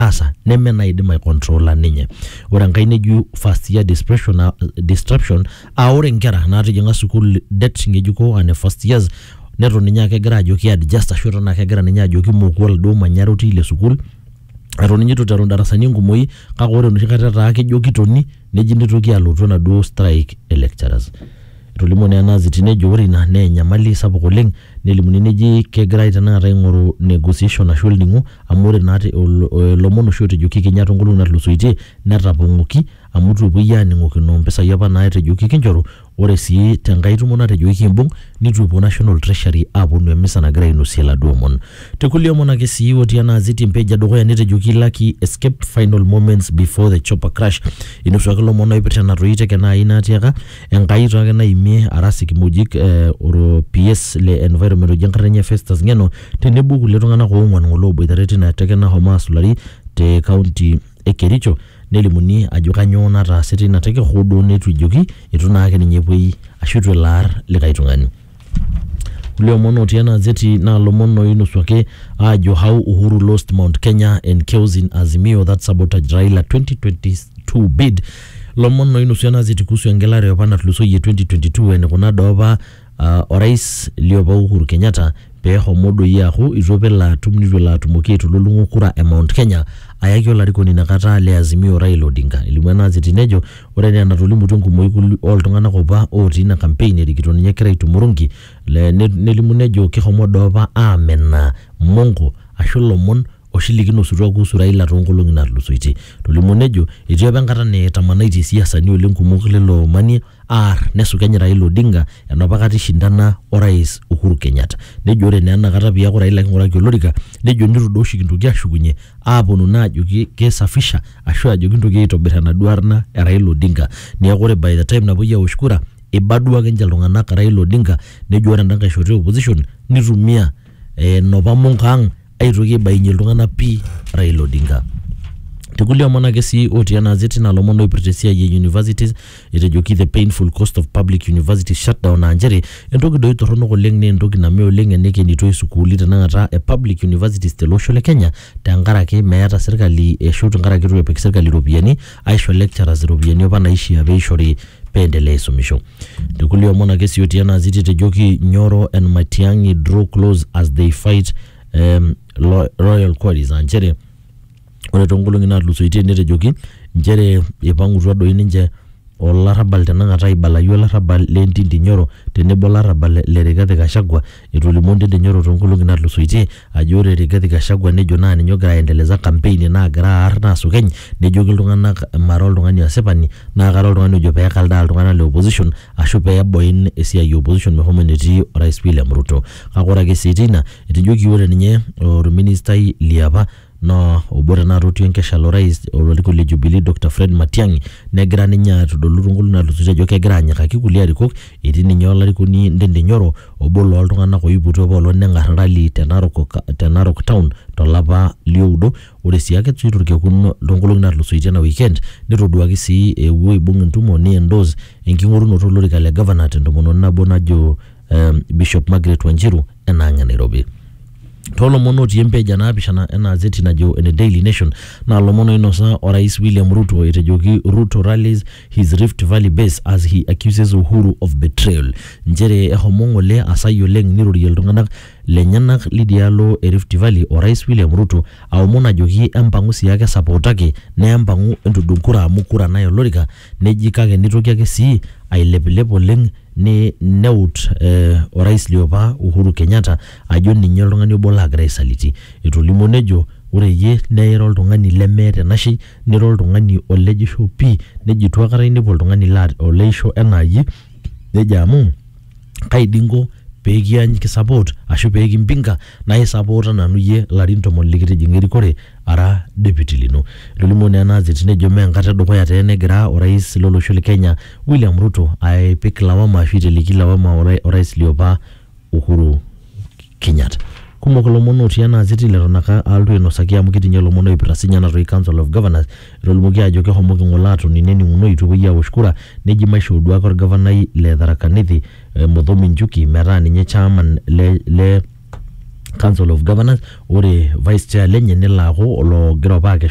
asa neme naidim aicontrola ninye. Ore enkae neji first year dispersion a distraction aa ore nkera naatijing'a sukuul det ng'ejuko aa ne first years neton ninye aake egira aajo kiadjust ashu eton ake egira ninye ajo kimoku oladuo manyara otii ile sukuul eton ninye itu iteru indarasani enkumoi kake ore enoshi kata etaa kejo kitoni neji nitoki alotu enaduo strike e lecturers. Etolimuo naa ena aziti nejo ore ina naa enyamali sapuk oleng nelimuni neji kegirai tenakata aing'oru negotiation ashu olning'o amu ore naa te ilomon oshi ootejoki kenya toonkolong'i naatulusoitie netapong'oki amu itu epuoi aaning'okino mpisai apa naatejoki kinchoru Ore sii te nkae tumo natejoki kimbung nitu epuo National Treasury aaponu emisa nagira ainosie laduo omon. Te kulie omon ake sii otii ena azeti empage edukuya netejoki Lucky escaped final moments before the chopper crash. Inosuaki lomon oipirta ena toyie te kenya ai natiaka Enkai too ake naimie aras ikimojik ee oro PS le environment oji enkarna enye Festus Ngeno tenebo okulie tunganak oonguan ngole oboitare tina teke nashomo asulari te kaunti e Kericho. Nelimuni ajo kanyoo nataase teina teke hoo duo neitu ejoki eitu naake ninye epuoi ashu eitu elo aar likae tung'ani. Kulie omon otii ena azeti naa lomon oinosuaki aajo how Uhuru lost Mount Kenya and chaos in Azimio that sabotaged Raila 2022 bid. Lomon oinosu ena azeti kuhusu engelare opa natulusoyie 2022 enikuna doopa Aa Orais liopa Uhuru Kenyatta pee ehomo doi aaku eitu apa elo atum neitu elo atumoki aitululung'o kura e Mount Kenya ayaki olarikoni inakata le Azimio Raila Odinga. Elimu ena gazeti nejo ore enaa enatolimutuo enkumoi oo ltung'anak opa otii ina kampein erikito ninye egira aitumo oronki nelimu nejo keshomo doi opa aamenaa monko ashu ilomon oshi likinosutua kuhusu Raila too nkolong'i naatulusoitie. Etolimuo nejo etii opa enkata netamanaitie isiasani oleng kumok leilo manie. aar nesukeny Raila Odinga enopa kata ishindana o rais Uhuru Kenyatta. Nejo ore naa ena kata piaku Raila king'uraki olorika, nejo nitu duo oshi kintoki ashukunye aaponu naa ajoki kisafisha ashu ajo kintoki aitobir enaduo arna e Raila Odinga. Neeku ore by the time napuoi awosh kura, iba duo akenche iltung'anak Raila Odinga nejo ore enda nkae shoto e opposition nitumia enopa monko ang' aitoki aibainyie iltung'anak pii Raila Odinga. Tekulie omon ake sii otii ena azeti naa lomon oipirta esiai e universities etejoki the painful cost of public university shutdown aa nchere entoki doi torronok oleng naa entoki name oleng enekenitoi sukuuli tenakata e public universities tele osho le Kenya tenkaraki meeta sirkali ashu tenkaraki itu epik sirkali iropiyiani aisho lecturers iropiyiani apa naishia peishori peendelea aisumisho. Tekulie omon ake sii otii ena ziti etejoki Nyoro and Matiang'i draw close as they fight um, lo- royal quarries aa nchere ore toonkolong'i naatulusoitie netejoki nchere eipang'utua doi ninche olarrabal tenakata aibalayu olarrabal le Ntindi Nyoro tenebo olarrabal le Rigathi Gachagua Etolimuo Ndindi Nyoro too nkolong'i natulusoitie ajo ore Rigathi Gachagua nejo naa ninye ogira aendeleza kampeini naagira aar naasukeny nejoki iltung'ana mara oltung'ani asipani naa kara oltung'ani ojo pee ekaldaa iltung'ana le opposition ashu pee eboin esiai e opposition meshomo enetii Orais William Ruto. Kake ore ake sii teina etejoki ore ninye olministai liapa Naa obo tenakata otii enkesha lo rais lo larikok le Jubilee Dr Fred Matiang'i negira ninye aitodolu too nkolong'i naatulusoitie ajo kegira anyikaki kulie arikok etii ninye olarikoni Ndindi Nyoro obo loo ltung'anak oipotuo apa olong' neng'ar rally te Narok te Narok town to lapa li oudo. Ore sii ake sii torkekun too nkolong'i naatulusoitie ena weekend nitoduaki sii ewuo aibung' entumo ni endorse enking'orunoto olorika le governor te ntomononi nabo najo um, Bishop Margaret Wanjiru enang e Nairobi. Toolomon otii empeja naapishana ena azeti najo ene Daily Nation naa lomon oinosa orais William Ruto etejoki Ruto rallies his Rift Valley base as he accuses Uhuru of betrayal. Nchere ehomo ng'ole asai oleng nirorie iltung'anak lenyenak lidialo e Rift Valley orais William Ruto aomon ajoki empang'u siake esapootaki naa empang'u entudung kura amu kura naye olorika Neji kake neitoki ake sii ailepilep oleng ni neut eh orais liopa Uhuru Kenyatta ajo ninye oltung'ani obo lagira aisaliti. Etolimuo nejo ore iyie naa ira oltung'ani lemeeta enashei nira oltung'ani olejisho pii nejo eitu aikata inepu oltung'ani laa oleisho enaa iyie nejo amu kai dii inko pee kisupport ashu pee kimpinga naa isupporta nanu iyie ilarin tomon likitijing'a erikore ara deputy lino. Etolimuo naa ena kiti nejo mee enkata e dukuya taa ena egira orais lo losho le Kenya William Ruto aipik lawama ashu aiteleki lawama orais liopa Uhuru Kenyatta. Kumok ilomon otii ena gazeti leton ake alotu ainosaki amu ketii nye ilomon oipirta siinye ena toki Council of Governors. Etolimuoki aajo kehomoki ng'ole aatoni nening'uno eitu epuoi aawosh kura neji maisho olduak olgavanai le Tharaka Nithi Muthomi Njuki metaa ninye chairman le, le Council of Governors ore vice chair lenye nelo aaku oloogira opa akesho